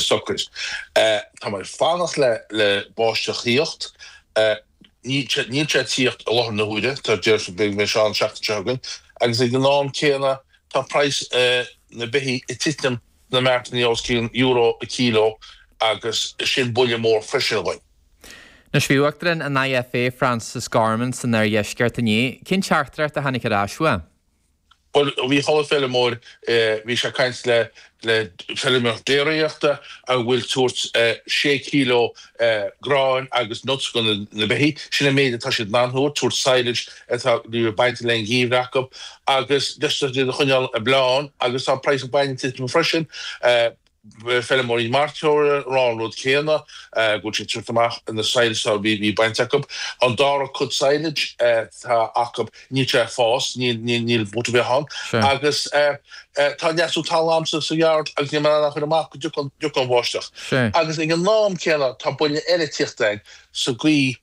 socair. Tá mé ag fanacht le báisteach thíocht. Níl sé ag tíocht i láthair na huaire, tá déarfainn go mbeidh sé ann an seachtain seo chugainn, agus ag an am céanna tá praghas na beithí ag titeam sna martannaí os cionn euro a kilo agus sin buille mór freisin dhúinn. Anois bhí Uachtarán an IFA, Francis Gorman san oirdheisceart inné. Cén teachtaireacht a tháinig ar ais uaidh? Bhuel, bhí halla feirmeoir, bhí sé ag caint le le feirmeoir déiríochta a bhfuil tabhairt sé kilo gráin agus nuts go na beithí, sin an méid atá siad in ann thabhairt, tabhairt silage atá bainte le an geimhreadh acu agus deis do chuid iad a choinneáil ag bleán agus tá praghas an bhainne ag titim freisin. feirmeoirí mairteola ag rá an rud céanna, go bhfuil siad ag tabhairt amach an silage a bhí bainte acu. An dara cuid silage atá acu, níl sé ag fás, níl, níl, níl but ar bith ann. Sure. Agus tá an leasú talún sa sa yard agus níl mé in ann a chur amach go dtiocfaidh an bháisteach. Sure. Agus ag an am céanna tá buille eile tíocht air sa gcaoi,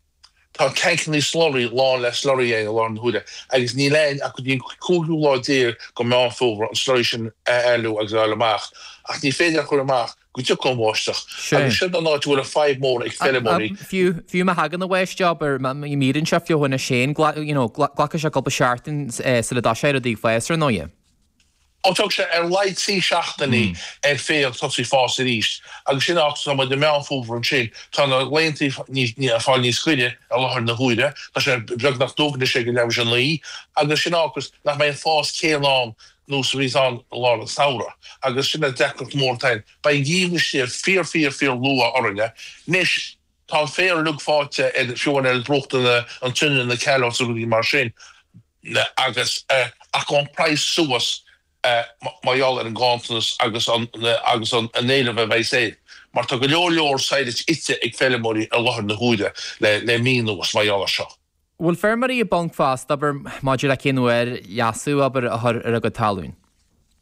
Tá tancannaí slurry lán le slurry i láthair na huaire agus níl againn ach go dtí an cúigiú lá déag de Meán Fómhair an slurry sin a éalú agus a fháil amach. Ach ní féidir a chur amach go dtiocfaidh an bháisteach agus sin an áit a bhfuil an fadhb mór ag feirmeoirí. Fiú má thagann an bháisteach, abair, imíonn sé feofainn is féin, you know, glacfaidh sé cúpla seachtain sula dtoiseoidh rudaí ag fás, ar ndóighe. Tógfaidh sé ar laghad trí seachtainí ar féar tosaí ag fás arís agus sin áit atá muid i Meán Fómhair ansin. Tá na laethantaí ag fáil níos giorra i láthair na huaire. Tá sé beagnach dubh anois ag leath tar éis a naoi agus sin an fáth nach mbeidh an fás céanna ann nós a bhíos ann i lár an samhradh agus sin an deacracht mór atá ann. Beidh an geimhreadh istigh fíor fíor fíor luath orainn anois. Tá an féar uilig feoite ar fiú amháin ar bruacha na Sionainne na callows agus rudaí mar sin. le agus rachaidh an praghas suas mar gheall ar an ganntanas agus an agus an an éileamh a bheidh air mar tá go leor leor silage ite ag feirmeoirí i láthair na huaire le le mí anuas mar gheall ar seo. Bhfuil feirmeoirí i bponc fosta, abair, maidir le cén uair leasú, abair, a chur ar a gcuid talún?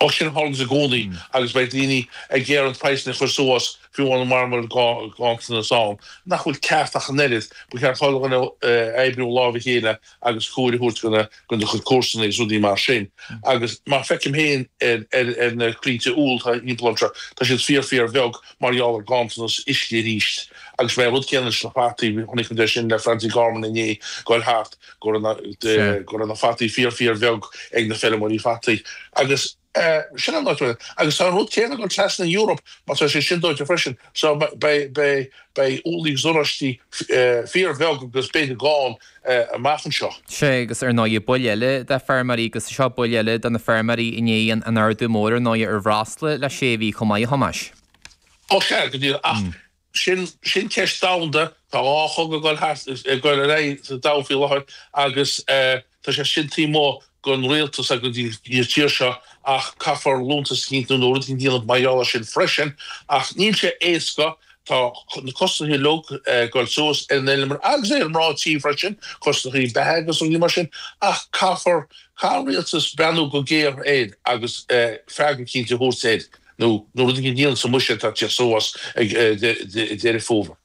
Ach sin a tharlaíos i gcónaí agus beidh daoine ag iarraidh praghsanna a chur suas faoi bhálaí mar go bhfuil ganntanas ann nach bhfuil ceart ach an oiread. Ba cheart chuile dhuine oibriú láimh a chéile agus cabhair a thabhairt go do chuid comharsana agus rudaí mar sin agus mar feicim féin ar na croinnte úll atá thimpeall ormsa tá siad fíor fíor bheag mar gheall ar ganntanas uisce arís agus beidh an rud céanna leis na fataí chonaic muid é sin le Francie Gorman inné ag goil thart go raibh na, Sea. go raibh na fataí fíor, fíor bheag ag na feirmeoirí fataí. Agus tá an rud céanna ag dul trasna an Eoraip, mar tá sé sin dóite freisin. So beidh úllaí is oráistí fíor bheag agus b'fhéidir gann amach anseo. Sea, agus ar ndóigh buille eile d'fheirmeoirí, agus seo buille eile do na feirmeoirí i ndiaidh an ardú mór ar ndóigh ar bhreosla le sé mhí chomh maith a Thomáis. Ó sea, go díreach, ach Sin, sin ceist domhanda. Tá dhá chogadh ag dul thart, ag dul ar aghaidh sa domhan faoi láthair agus tá sé sin taobh amuigh dhen rialtas agus den tír seo ach caithfear liúntas a chinntiú nó rud éigin a dhéanamh mar gheall ar sin freisin. Ach níl sé éasca, tá na costais uilig ag dul suas ar an bhfeilméara agus ar na mná tí freisin, costais beatha agus rudaí mar sin ach caithfear, caithfidh an rialtas breathnú go géar air agus freagra cinnte a thabhairt air. nó rud eicínt a dhéanamh sa mbuiséad atá ag teacht suas ag Deireadh Fómhair.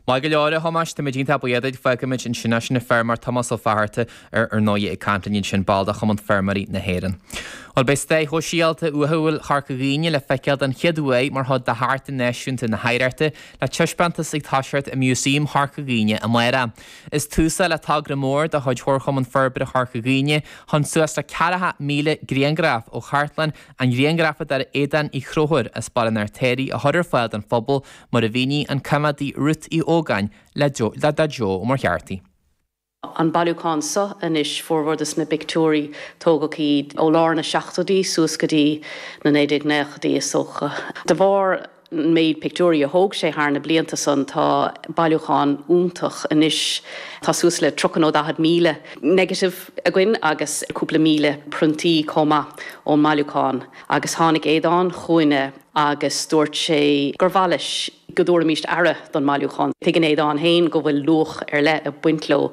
Maith go leor, a Thomáis, tá muid iontach buíoch duit. Fágfaimid ansin leis an feirmeoir Tomás Ó Fátharta, ar ndóigh, ag caint linn ansin, ball de Chumann Feirmeoirí na hÉireann. Bhuel, beidh stair shóisialta uathúil Chorca Dhuibhne le feiceáil den chéad uair mar chuid de Chartlann Náisiúnta na hOidhreachta, le taispeántas atá ag oscailt i Músaem Chorca Dhuibhne amáireach. Is tús é seo le togra mór de chuid Chomharchumann Forbartha Chorca Dhuibhne chun suas le 4,000 grianghraf ó Chartlann An ghrianghrafadóra Aodán Uí Chonchúir as Baile an Fheirtéaraigh a chur ar fáil don phobal mar a mhínigh an coimeádaí Ruth Uí Ógáin le Dara Ó Muircheartaigh. An bailiúchán seo anois, formhór de na pictiúirí, tógadh iad ó lár na seachtóidí suas go dtí na 1990idí is dócha. De bharr an méid pictiúirí a thóg sé thar na blianta san tá bailiúchán iontach anois tá suas le tríocha nó daichead míle negative againn agus cúpla míle priontaí chomh maith ón mbailiúchán agus tháinig Aodán chugainne agus dúirt sé gur mhaith leis go dtabharfaimíst aire don mbailiúchán. Tuigeann Aodán féin go bhfuil luach ar leith ag baint leo.